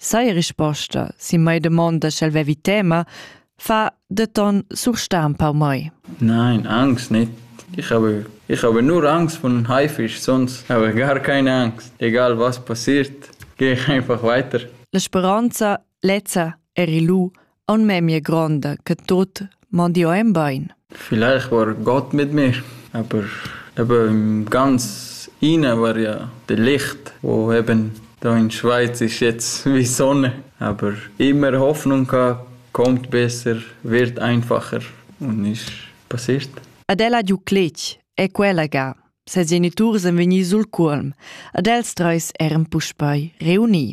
Sai risposta, si mai domanda sch'el vevi tema, fa denton surstar un pau mai. Nein, Angst nicht. Ich habe, ich habe nur Angst von Haifisch, sonst habe ich gar keine Angst. Egal was passiert, gehe ich einfach weiter. La speranza lezza eri lu aun memia gronda che tut mondio en bain. Vielleicht war Gott mit mir, aber eben ganz inne war ja das Licht, wo eben da in Schweiz ist jetzt wie Sonne, aber immer Hoffnung gehabt, kommt besser, wird einfacher und ist passiert. Adela Duclitch è quella ga. Ses geniturs èn vegni sul cuolm, ad els treis eran puspei reuni.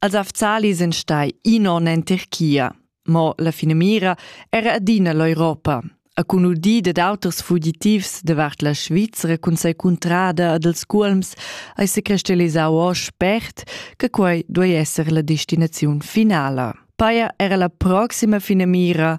Els afzali sun stai in on en Tirchia, mo la finamira era adina l'Europa. A cun udì dad auters fugitivs davart la Svizra cun sei cuntrada ad els culms hai se crestelisau o spert che quei duei esser la destinaziun finala. Paia era la proxima finamira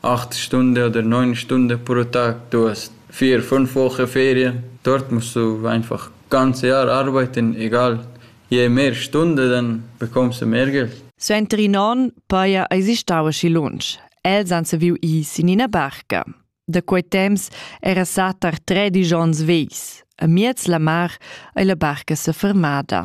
Acht stunda oder neun Stunden pro Tag. Du hast vier, fünf Wochen Ferien. Dort musst du einfach ganze Jahr arbeiten, egal. Je mehr Stunden, dann bekommst du mehr Geld. Suenter in onn paja eisi stau aschi lunsch. Els han saviu ir sin ina barca. Da quei temps era satar tredisch onns vegls. A miez la mar ei la barca sefermada.